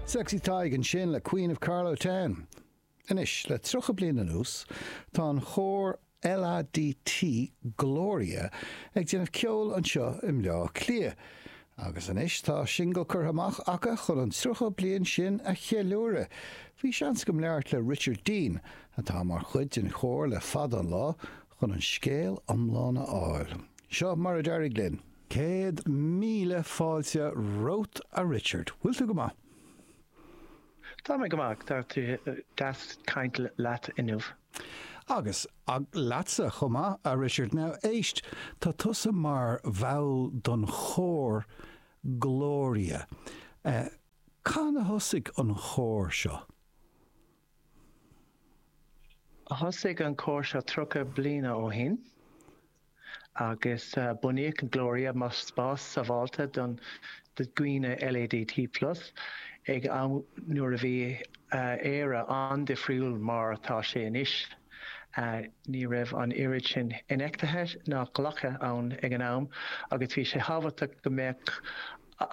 Sexy Tadhg ansin le Queen of Carlow Town. Anois, le 30 bliain anuas, tá an chór LADT Gloria ag déanamh ceoil anseo i mBleá Cliath agus anois tá singil curtha amach acu chun an 30 bliain sin a cheiliúradh. Bhí seans agam labhairt le Richard Dean, atá mar chuid den chór le fada an lá, chun an scéal iomlán a fháil. Seo mar a d'éirigh linn. Céad míle fáilte romhat, a Richard. Bhfuil tú go maith? Tá mé go maith, tá sé deas caint leat inniu. Agus leatsa chomh maith, a Richard. Now éist, tá tusa mar bhall don chór Gloria. Cathain a thosaigh an chór seo? Thosaigh an cór seo 30 bliana ó shin. agus bunaíodh Gloria mar spás sábháilte don dhaoine LADT plus, ag am nuair a bhí Éire an-difriúil mar atá sé anois. Ní raibh an oiread sin infheictheachta ná glactha ann ag an am agus bhí sé thábhachtach go mbeadh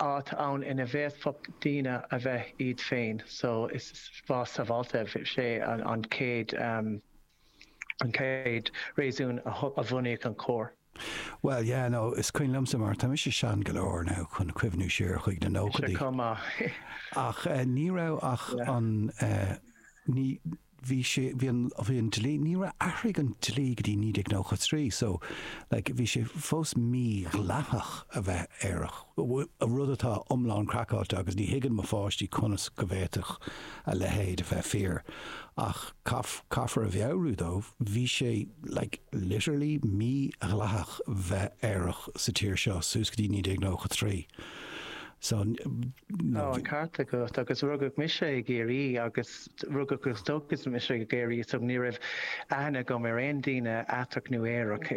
áit ann ina bhféadfadh daoine a bheith iad féin, so is spás sábháilte, sé an chéad. an chéad réasún a bhunaíodh an chór. Bhuel, yeah, no, is cuimhin liomsa mar tá mise sean go leor now chun cuimhniú siar chuig na nóchaidí. Sé chomh maith. Ach ní raibh ach an, ní, bhí sé, bhí an, bhí an dlí, ní raibh, athraigh an dlí go dtí 1993, so, like, bhí sé fós mídhleathach a bheith aerach, rud atá iomlán craiceáilte agus ní thuigeann mo pháistí conas go bhféadfadh a leithéid a bheith fíor, ach caithfear a mheabhrú dóibh, bhí sé like literally mí-dhleathach bheith aerach sa tír seo suas go dtí 1993. So, Tá an ceart agat agus rugadh mise i gCiarraí agus rugadh agus tógadh mise i gCiarraí so ní raibh aithne agam ar aon daoine aiteach nó aerach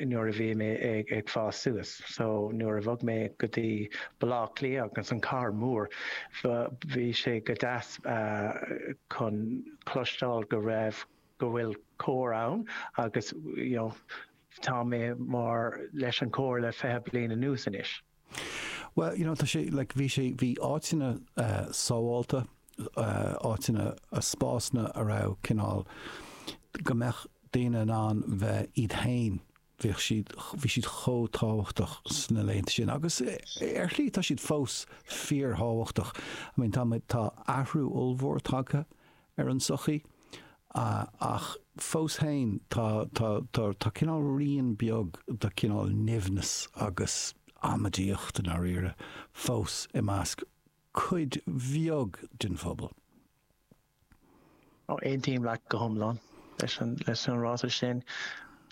nuair a bhí mé ag fás suas. So nuair a bhog mé go dtí Bleá Cliath agus an Cathair Mór bhí sé go deas chun cloisteáil go raibh, go bhfuil cór ann agus you know tá mé mar leis an cór le fiche bliain anuas anois. Well you know tá sé like bhí sé bhí áiteanna sábháilte, áiteanna spásanna a raibh cineál go mbeadh daoine in ann bheith iad féin bheadh siad, bhí siad chomh tábhachtach sna laethanta sin agus ar shlí tá siad fós fíorthábhachtach. I mean, tá muid, tá athrú ollmhór tagtha ar an tsochaí ach fós féin tá, tá, tá, tá cineál rian beag de cineál nimhneas agus amaideacht i ndáiríre fós i measc cuid bheag den phobal. Ó, aontaím leat go hiomlán leis an ráiteas sin,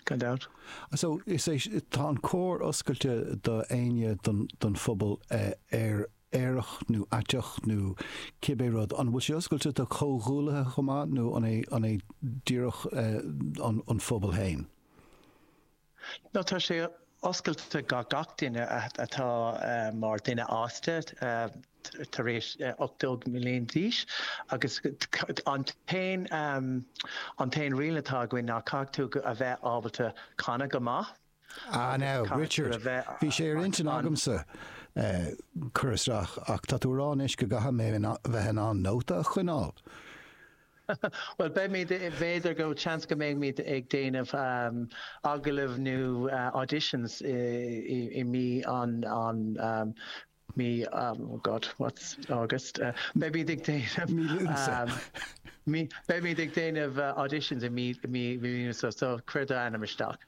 gan dabht. So, is é, tá an cór oscailte do éinne den phobal aerach nó aiteach nó cibé rud. An bhfuil sé oscailte do chomhghuaillithe chomh maith nó an é díreach an phobal féin? No, tá sé oscailte do gach duine atá mar duine fhásta tar éis 18 mbliana d'aois agus an t-aon riail atá againn ná caithfidh tú a bheith ábalta canadh go maith. Ah now, Richard, bhí sé ar intinn agamsa cur isteach ach tá tú a rá anois go gcaithfidh mé bheith in ann nóta a choinneáil. Bhuel, beimid, b'fhéidir go, seans go mbeimid ag déanamh um, agallamh nó uh, auditions i, i, i mí an, an um, mí um, oh God, what's August? Uh, beimid ag déanamh um, mí, beimid ag déanamh uh, auditions i mí, mí, mí, mí so, so cuir d'ainm isteach.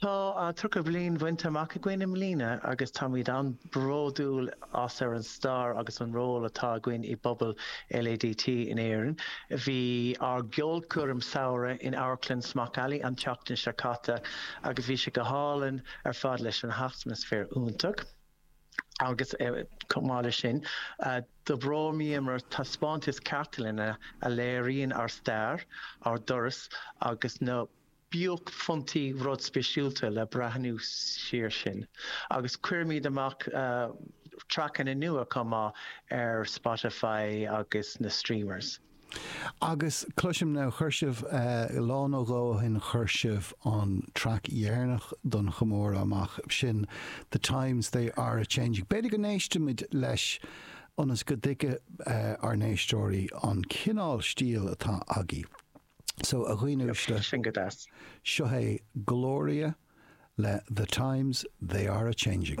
Tá tríocha bliain bainte amach againn i mbliana agus táimid an-bhródúil as ar an stair agus an ról atá againn i bpobal LADT in Éirinn. Bhí ár gceolchoirm samhraidh in Amharclann Smock Alley an tseachtain seo caite agus bhí sé go hálainn ar fad leis an atmaisféar iontach agus chomh maith leis sin d'óstálamar taispeántas cartlainne a léiríonn ár stair, ár dturas agus na. buaicphointí rud speisialta le breathnú siar sin agus chuireamar amach traiceanna nua chomh maith ar Spotify agus na streamers. Agus cloisim now, chuir sibh, lá nó dhó ó shin chuir sibh an traic dheireanach don chomóradh amach, sin The Times They Are A Changing. B'fhéidir go n-éistfimid leis ionas go dtuigfidh ár n-éisteoirí an cineál stíl atá agaibh. So, a dhaoine uaisle, seo é Gloria le The Times They Are A Changing.